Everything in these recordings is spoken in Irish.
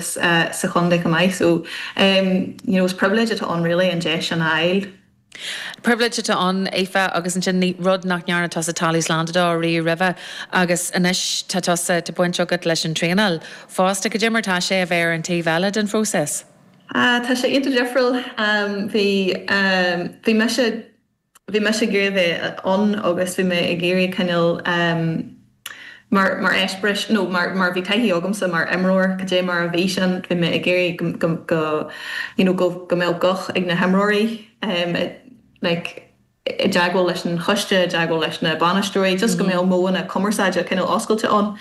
sa chontae chomh maith. So, you know, is pribhléid atá ann really an deis sin a fháil. Pribhléid atá ann, Aoife, agus ansin rud nach ndearna tusa tráchtaí sláinte dó riamh roimhe agus anois tá tusa, tá baint agat leis an traenáil fosta. Cad é mar atá sé, a bheith ar an taobh eile den phróiseas. Tá sé iontach difriúil. Bhí, bhí mise. bhí mise ag iarraidh a bheith ann agus bhí mé ag iarraidh cineál em mar, mar eispéireas no mar, mar bhí taithí agamsa mar imreoir cad é mar a bhí sin bhí mé ag iarraidh go, go, go you know go, go mbeadh guth ag na himreoirí em i like i dteagmháil leis an choiste, i dteagmháil leis na bainisteoirí just go mbeadh modhanna cumarsáide cineál oscailte ann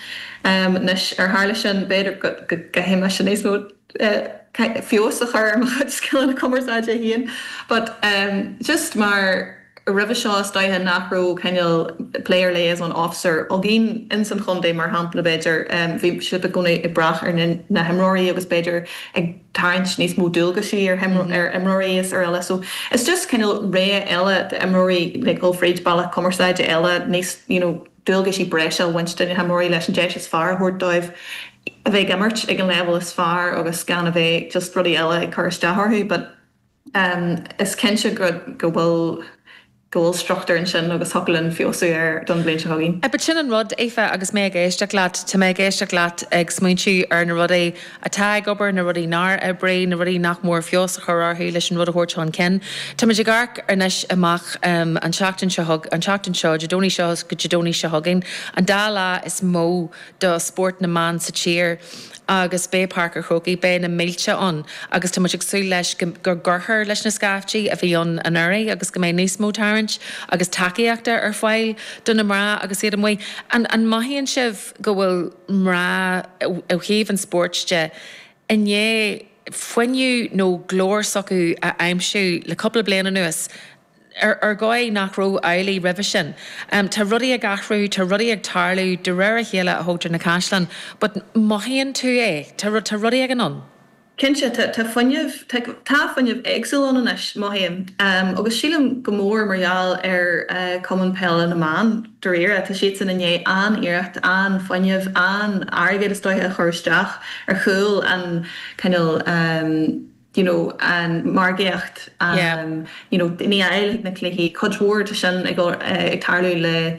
em anois ar tharla sin b'fhéidir go gcaithfidh mise níos mó. feabhas a chur ar mo chuid scileanna cumarsáide féin but em just mar roimhe seo is dóiche nach raibh cineál player liaison officer againn ins an chontae mar shampla b'fhéidir em bhí sibh i gcónaí ag brath ar na na himreoirí agus b'fhéidir ag tarraingt níos mó dualgaisí ar ar imreoirí is araile so is just cineál réidh eile d'imreoirí like dhul fríd bealach cumarsáide eile níos you know dualgaisí breise a bhaint de na himreoirí leis an deis is fearr a thabhairt dóibh a bheith ag imirt ag an leibhéal is fearr agus gan a bheith just rudaí eile ag cur isteach orthu but em is cinnte go go bhfuil go bhfuil struchtúr ansin agus thiocfadh linn feabhsú air don bhliain seo chugainn. But sin an rud, Aoife, agus mé ag éisteacht leat, tá mé ag éisteacht leat ag smaointiú ar na rudaí atá ag obair, na rudaí nár oibrigh, na rudaí nach mór feabhas a chur orthu leis an rud a thabhairt chun cinn. Táimid ag amharc anois amach an tseachtain seo chugainn, an tseachtain seo, Dé Domhnaigh seo go Dé Domhnaigh seo chugainn, an dá lá is mó do spórt na mban sa tír agus beidh Páirc an Chrócaigh, beidh na mílte ann agus táimid ag súil leis go gcuirtear leis na scaiftí a bhí ann anuraidh agus go mbeidh níos mó tarraingt agus tacaíochta ar fáil do na mná agus iad amuigh. An mothaíonn sibh? go bhfuil mná, ó thaobh an spóirt de, i ndiaidh fuinneamh nó glór s'acu a aimsiú le cúpla bliain anuas, ar dhóigh nach raibh amhlaidh roimhe sin. Tá rudaí ag athrú, tá rudaí ag tarlú de réir a chéile, a thógtar na caisleáin, but mothaíonn tú é, tá rudaí ag dul anonn. Cinnte, tá fuinneamh, tá fuinneamh éagsúil ann anois, mothaím, agus sílim go mór mar gheall ar Chumann Peile na mBan, dáiríre. Tá siadsan i ndiaidh an-iarracht, an-fhuinneamh, an-airgead is dóiche a chur isteach ar chúl an cineál you know an margaíocht you know timpeall na cluichí, cuid mhór de sin ag tarlú le,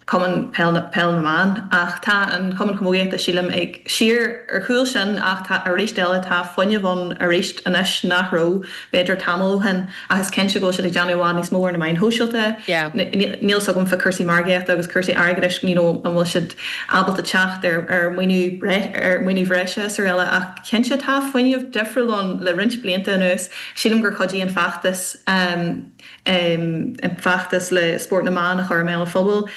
Cumann Peil na mBan ach tá an Cumann Camógaíochta sílim siar ar chúl sin ach tá arís eile tá fuinneamh ann arís anois nach raibh b'fhéidir tamall ó shin ach is cinnte go bhfuil siad ag déanamh i bhfad níos mó ar na meáin shóisialta níl fhios agam fá cúrsaí margaíochta agus cúrsaí airgeadais you know an bhfuil siad ábalta teacht ar ar maoiniú ar maoiniú bhreise srl eile ach cinnte tá fuinneamh difriúil ann le roinnt blianta anuas sílim gur chuidigh an feachtas an feachtas le spórt na mban a chur i mbéal an phobail,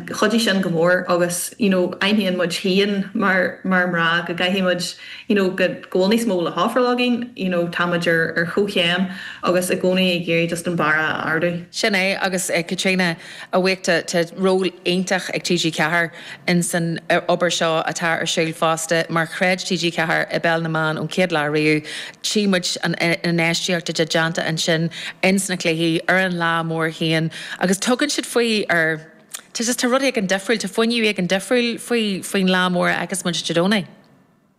chuidigh sin go mór agus you know aithníonn muid féin mar mná go gcaithfidh muid you know go bhfuil níos mó le hofráil againn, you know tá muid ar chomhchéim agus i gcónaí ag iarraidh just an barra a ardú. Sin é agus Caitríona I ndomhnach tá, tá ról iontach ag TG4 insan obair seo atá ar siúl fosta mar chreid TG4 i bpeil na mban ón chéad lá riamh. Tchí muid an infheistíocht atá déanta ansin ins na cluichí, ar an lá mór féin agus tugann siad faoi ar, tá rud éigin difriúil, tá fuinneamh éigin difriúil faoi faoin lá mór agus muid Dé Domhnaigh.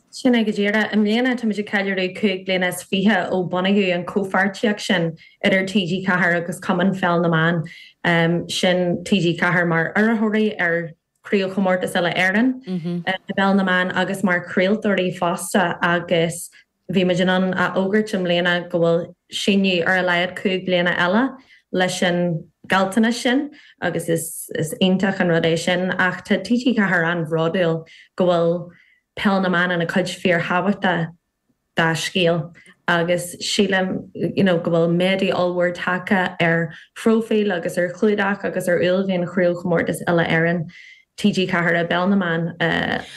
Sin é go díreach. I mbliana táimid ag ceiliúradh cúig bliana is fiche ó bunaíodh an chomhpháirtíocht sin idir TG4 agus Cumann Pheil na mBan, sin TG4 mar urraitheoirí ar Chraobhchomórtas Uile-Éireann i bPeil na mBan agus mar chraoltóirí fosta, agus bhí muid in ann a fhógairt i mbliana go bhfuil síneadh ar a laghad cúig bliana eile leis an ngealltanas sin agus is iontach an rud é sin. Ach tá TG4 an-bhródúil go bhfuil. Peil na mban ina cuid fíorthábhachtach dá scéal agus sílim you know go bhfuil méadú ollmhór tagtha ar phróifíl agus ar chlúdach agus ar uaillmhian chraobhchomórtas uile-Éireann TG4 i bpeil na mban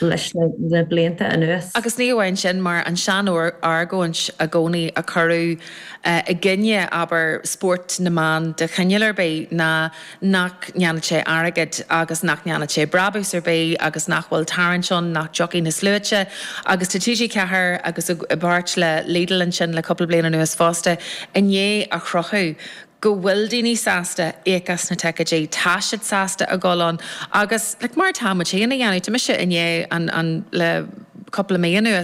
leis na blianta anuas. Agus ní amháin sin, mar an sean-argóint i gcónaí a cuireadh i gcoinne, abair, spórt na mban de chineál ar bith ná, nach ndéanfaidh sé airgead agus nach ndéanfaidh sé brabús ar bith agus nach bhfuil tarraingt ann, nach dtiocfaidh na sluaite. Agus tá TG4, agus i bpáirt le Lidl ansin le cúpla bliain anuas fosta, i ndiaidh a chruthú go bhfuil daoine sásta íoc as na ticeidí, tá siad sásta a dhul ann agus, like, mar atá muid féin a dhéanamh, tá mise i ndiaidh an, le cúpla mí anuas.